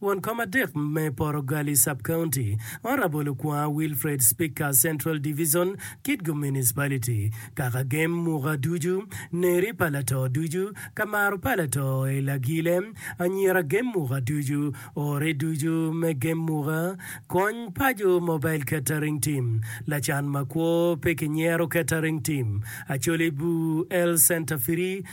Won kom adek me Poro Gali Sub-County, Honourable Okwonga Wilfred Speaker Central Division, Kitgum Municipality, Kaka gem muka ducu, Neri pa lato ducu, Kamaro pa lato i Lagile, Anyira gem muka ducu, Ore ducu me gem muka, Kony paco Mobile Catering Team, Lacan makwo pe kinyero Catering Team, Acholi Bur Health Centre Free,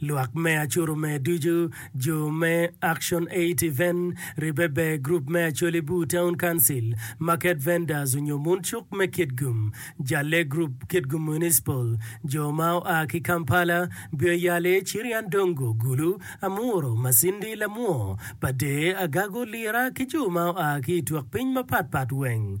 Lwak me Acuru me Ducu, Jo me Action Aid Event, Ribbe Ber Group me Acholi Bur Town Council, Market Vendors onyo Mun Cuk me Kitgum, Jalle Group, Kitgum Municipal, Jo ma oa ki Kampala, Bio Yale, Chirian Dongo, Gulu, Amuro, Masindi, Lamwo, Pader, Agago, Lira ki jo ma oa ki i twok piny mapat pat weng.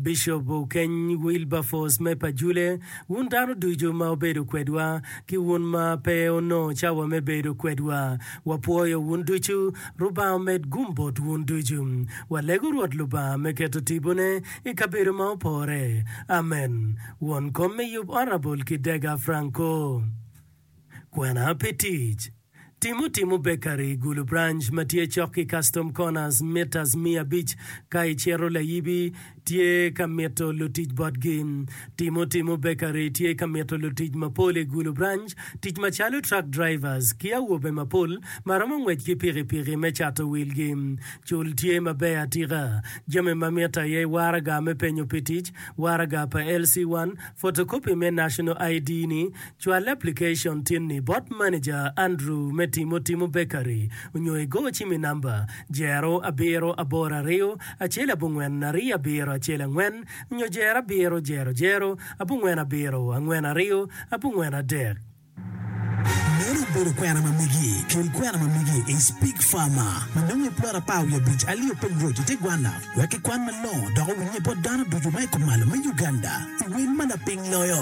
Bishop Okeny Wilberforce me Pajule, wun dano ducu ma wubedo kwedwa, ki wun ma pe wunongo cawa me bedo kwedwa, wapwoyo wun ducu. Lubanga omed gum bot wun ducu. Walego Rwot Lubanga me keto tibone i kabedo ma opore. Amen. Won kom me yub Honourable Kidega Franco. Kwena pi tic. Timo timo bekari i gulu branch ma tye cok ki Custom Corners mitas miya abic ka icito layibi tye ka mito lutic botgi. Timo timo bekari tye ka mito lutic mapol i gulu branch tic macalo truck drivers ki awobe mapol ma romo ngwec ki pikipiki me cato wilgi. Cul tye maber atika. Jami ma mitte aye waraga me penyo pi tic, waraga pa LC1, photocopy me National ID ni, Cwal aplikacon tin-ni bot maneja Andrew me Timo Timo Bakery onyo igo ci mi namba, Jero abiro aboro ariyo acel abongwen ariyo abiro acel angwen nyo Jero abiro jero jero abongwen abiro angwen ariyo abongwen adek. Meno obedo kwena ma migi. Kel kwena ma migi i Speak Farmer ma nongo i plot apar wiye abic Alio Peng Road i te gwanna wek kikwan malongo dok owinye bot dano ducu ma i kumalo me Uganda i wel ma lapiny loyo.